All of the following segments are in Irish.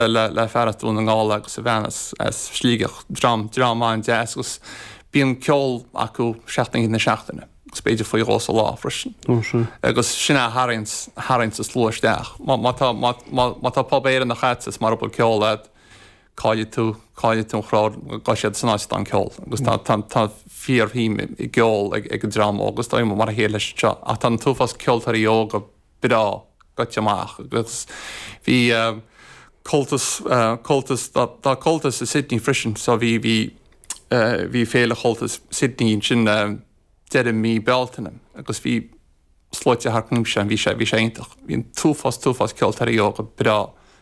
le fear as Dún na nGall agus a bhean as Sligeach, dream, dream an-deas agus bíonn ceol acu seacht n-oíche na seachtaine agus b'fhéidir faoi dhó sa lá freisin. Ó, sea. Agus sin é a tharraing, tharraing an slua isteach. Má, má tá, má, má, má tá pub Éireannach a'tsa is mara bhfuil ceol a'd, caillfidh tú, caillfidh tú an crowd, gabhfaidh siad san áit a bhfuil an ceol agus tá, tá, tá fíorshuim i gceol ag, ag an dream óg agus tá mar a chéile leis anseo ach tá an t-uafás ceoltóirí óga breá gaibhte amach agus bhí Comhaltas, Comhaltas, tá Comhaltas i Sydney freisin so bhí, bhí, bhí Féile Comhaltas Sydney ansin deireadh mí Bealtaine agus bhí sluaite thart timpeall ann, bhí sé, bhí sé iontach, bhí an t-uafás, t-uafás ceoltóirí óga breá.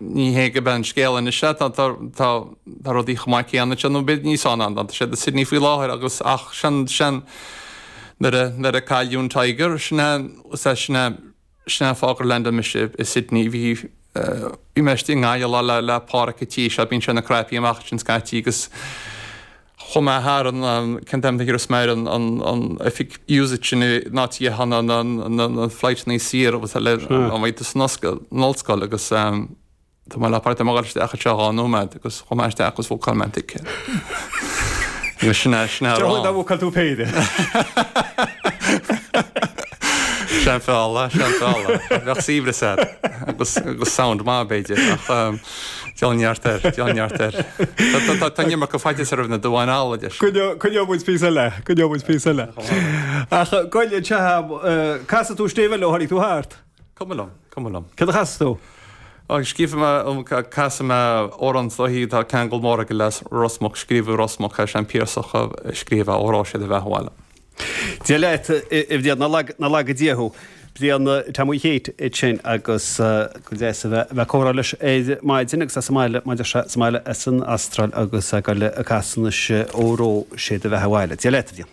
Níl fhios cén chaoi a mbeidh an scéal anois leat, tá rudaí chomh maith céanna anseo nó b'fhéidir níos fearr ná atá siad i Sydney faoi láthair agus ach sin, sin, nuair a cailleadh an Tiger, sin é, is é sin é, sin é fáth gur landáil mise i Sydney. Bhí, bhí mé istigh i nGaillimh lá le Páraic an tí seo, bíonn sé ina chraipí amach ansin scaití agus chomh maith thar an ceann taobh na thiar is mare an oifig used sin i nÁití Sheanna na Fleidhmeannaí siar agus le an bhaint is an Ollscoil agus Tá mé le páirt am gáiriste acha seo dhá nóiméad agus chomh maith isteach agus bhfocal mé tic Ní sin é sin ar an bhfocal tú péire. Sean fála sean fála bheith síbre said agus go sound má beidir ach. Déan neart air, déan neart air. Tá an iomarca faitíos roimh na duáin alla de sin. Coinneoidh muid píosa eile, coinneoidh muid píosa eile. Ach gabh i leith chugam, an gcasfaidh tú stéibh eile ó tháinig tú thart? Cuma liom, cuma liom. Céard a chasfas tú? Ó, scríobh mé, casfaidh mé amhrán sluaghaidh, atá ceangal mór aige le Ros Muc, scríobhadh i Ros Muc, is é an Piarsach a scríobh é, óró sé do bheatha abhaile. Dia leat, a Bhriain, ná laga Dia thú. Brian, Tom Sheáin a bhí ansin agus ba dheas a bheith a' comhrá leis ar maidin agus é sa mbaile, mar a deir sé, sa mbaile, as an Astráil agus é a' gabháil a' casadh anois, óró, sé do bheatha abhaile. Dia leat, a Bhriain.